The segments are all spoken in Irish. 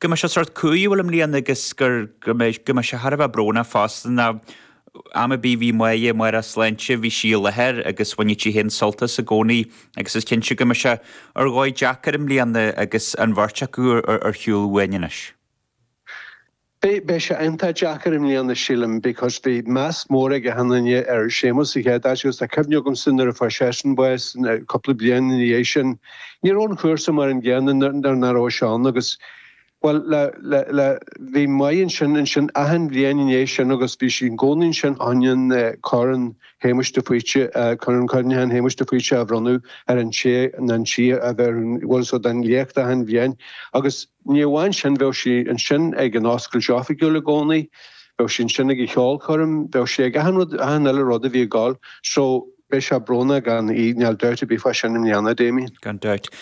go mbeidh sé sórt cumhúil i mbliana agus gur go mbeidh go mbeidh sé thar a bheith brónach fosta nó am ar bith bhí maith mhair a sláinte bhí sí i láthair agus bhain sí féin sult as i gcónaí agus is cinnte go mbeidh sé ar dhóigh deacair i mbliana agus an bheirt acu ar shiúl uainn anois. Beidh sé iontach deacair i mbliana sílim because bhí meas mór ag achan duine ar Séamus sa chéad áit agus tá cuimhne agamsa nuair a fuair seisean bás cúpla bliain ina dhiaidh sin ní raibh an cúrsa mar an gcéanna nuair nach raibh sé ann agus bhuel bhí Mae ansin achan bhliain ina dhiaidh sin agus bhí sí i gcónaí ansin chun an Corn Shéamuis de Faoite, Corn Cuimhneacháin Shéamuis de Faoite a bhronnadh ar an té nó an tí a bheadh ar an bhfuil so den léacht achan bhliain agus. Ní amháin sin, bheadh sí ansin ag an oscailt oifigiúil i gcónaí, bheadh sí ansin ag an cheolchoirm, bheadh sí ag achan rud, achan uile rud a bhí ag gabháil. So, beidh sé brónach gan í, níl dabht ar bith fá sin i mbliana, Damien. Gan dabht.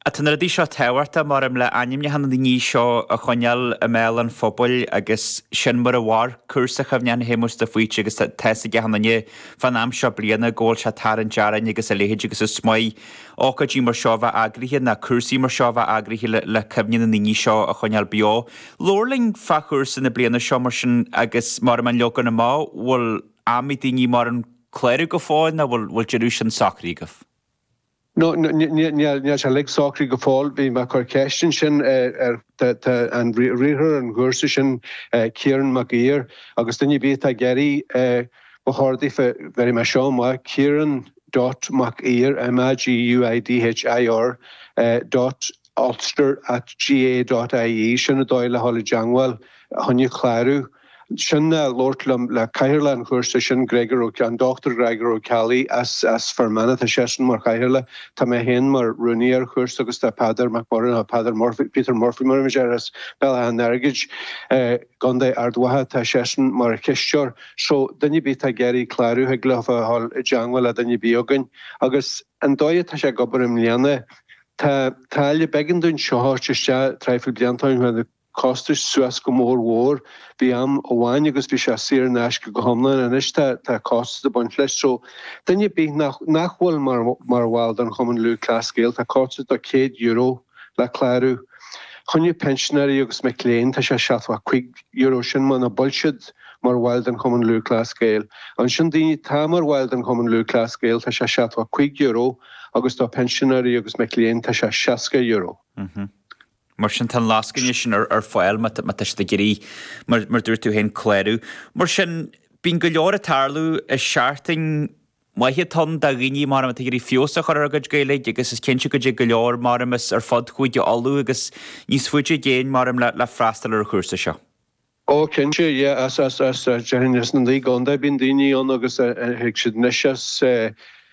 Ach tá na rudaí seo tábhachtach, mar em le ainmneacha na ndaoine seo a choinneáil i mbéal an phobail agus sin mar a mhair cúrsa Cuimhneacháin Shéamuis de Faoite agus tá's ag achan duine fán am seo bliana go bhfuil sé ag tarraingt orainn agus a leithéid agus is maith ócáidí mar seo a bheith eagraithe nó cúrsaí mar seo a bheith eagraithe le cuimhne na ndaoine seo a choinneáil beo. Labhair linn fá chúrsa na bliana seo mar sin agus mar an leagan amach, bhfuil am ag daoine mar an clárú go fóill nó bhfuil deireadh sin socraithe agaibh? No, níl sé uilig socraithe go fóill. Bhí mé ag cur ceist ansin ar an riarthóir an chúrsa sin, Ciarán Mag Uidhir, agus duine ar bith atá ag iarraidh mo chordaí fé, bheirfidh mé seo amach, Ciarán, dot Mag Uidhir, MAG UIDH IR, dot Ulster at GAA dot IE, sin an dóigh le dhul i dteangmháil choinne clárú. Sin nó labhairt le cathaoirleach an chúrsa sin, Gregor Ó, an Dr Greagor Ó Ceallaigh as, as Fear Manach, tá seisean mar chathaoirleach, tá mé féin mar rúnaí ar an chúrsa agus tá Peadar Mac Murchú, Peadar Murphy, Peter Murphy mar a bheimis air as Béal Átha an Airgid, eh, gContae Ard Mhacha tá seisean mar chisteoir so duine ar bith atá ag iarraidh clárú thig leofa a dhul i dteangmháil le duine ar bith againn agus an dóigh atá sé ag obair i mbliana tá táille b'éigean dúinn seo a thabhairt isteach traidhfil blianta ó shin chuaigh costais suas go mór mhór bhí am amháin agus bhí sé saor in aisce go hiomlán anois tá tá costas ag baint leis so duine ar bith nach nach bhfuil mar mar bhall don Chumann Lúthchleas Gael tá costas de €100 le clárú. Choinne pinsinéirí agus mic léinn, tá sé seachtó cuig euro sin muna bhfuil siad mar bhaill den Chumann Lúthchleas Gael. Ansin daoine atá mar bhaill den Chumann Lúthchleas Gael tá sé seachtó cuig euro agus do pinsinéirí agus mic léinn tá sé seasca euro. Mar sin tá an lascaine sin ar ar fáil má tá siad ag iarraidh, mar dúirt tú féin, clárú. Mar sin bíonn go leor ag tarlú i seachtain. Maise tá an-chuid daoine mar a tá ag iarraidh feabhas a chur ar a gcuid Gaeilge agus is cinnte go dtig go leor mar a bheadh as ar fud Chúige Uladh agus níos faide i gcéin mar a bheadh le freastal ar an chúrsa seo. Ó cinnte, yeah, as, as, as, déarfainn as na naoi gcontae bíonn daoine ann agus tig siad anois as i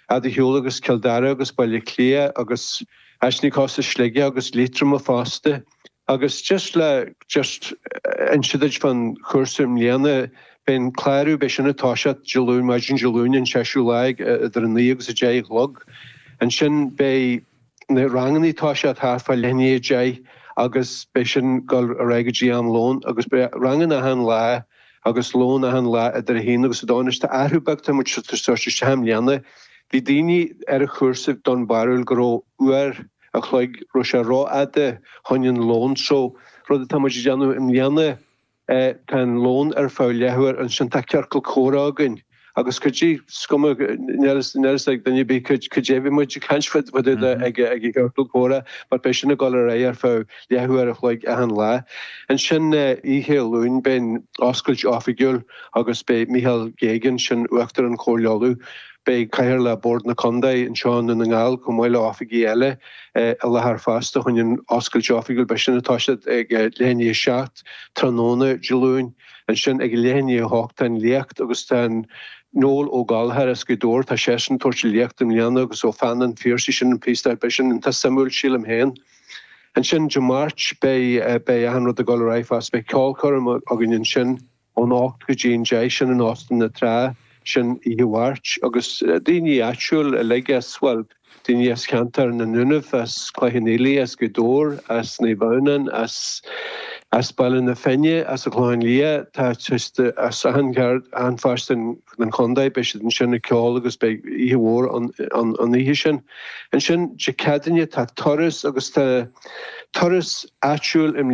bhfad ar shiúl agus Cill Dara agus Baile Átha Cliath agus ansin fiú as Sligeach agus Liatroim fosta. agus just le just inse duit fán chúrsa i mbliana beidh an clárú beidh sin ag toiseacht Dé Luain maidin Dé Luain an seisiú lá déag idir 9 agus 10 a chlog ansin beidh na rangannaí ag toiseacht thart fá leath i ndiaidh 10 agus beidh sin ag gabháil ar aghaidh go dtí am lón agus beidh ranganna achan lá agus lón achan lá idir 1 agus 2 anois tá athrú beag tá muid ag tabhairt isteach i mbliana bhí daoine ar an chúrsa den bharúil go raibh uair a chloig, go raibh sé rófhada chun an lón so rud atá muid ag déanamh i mbliana tá an lón ar feadh leathuair ansin tá ciorcal comhrá againn agus go dtí seo ní bheidh a fhios ag duine ar bith cad cad é a bheidh muid ag caint fá dtaobh de ag ag ag ciorcal comhrá mar beidh sin ag dul ar aghaidh ar feadh leathuair a chloig achan lá ansin oíche Luain beidh oscailt oifigiúil agus beidh Michael Geoghegan sin uachtarán Chomhairle Uladh Beidh Cathaoirleach Bhord na Contae anseo i nDún na nGall chomh maith le hoifigí eile i láthair fosta chun an oscailt oifigiúil beidh sin ag toiseacht ag leath i ndiaidh a seacht tráthnóna Dé Luain. Ansin ag leath i ndiaidh a hocht tá an léacht agus tá Noel Ó Gallchóir as Gaoth Dobhair tá seisean ag tabhairt léacht i mbliana agus ó pheann an Phiarsaigh sin an píosa beidh sin iontach suimiúil sílim féin. Ansin Dé Máirt beidh beidh achan rud ag dul ar aghaidh fosta beidh ceolchoirm againn ansin. ón ocht go dtí an deich sin in Óstan na Trá, sin oíche Mháirt agus daoine áitiúil uilig as, bhuel, daoine as ceantar na nDúnaibh, as Cloich Cheann Fhaola, as Gaoth Dobhair, as Naomh Adhamhnáin, as, as Baile na Finne, as an Chlochán Liath, tá, just as achan cheard, achan pháirt den, den chontae, beidh siad ansin ag ceol agus beidh oíche mhór ann, ann, an oíche sin. Ansin Dé Ceadaoine tá turas agus tá turas áitiúil i mbliana.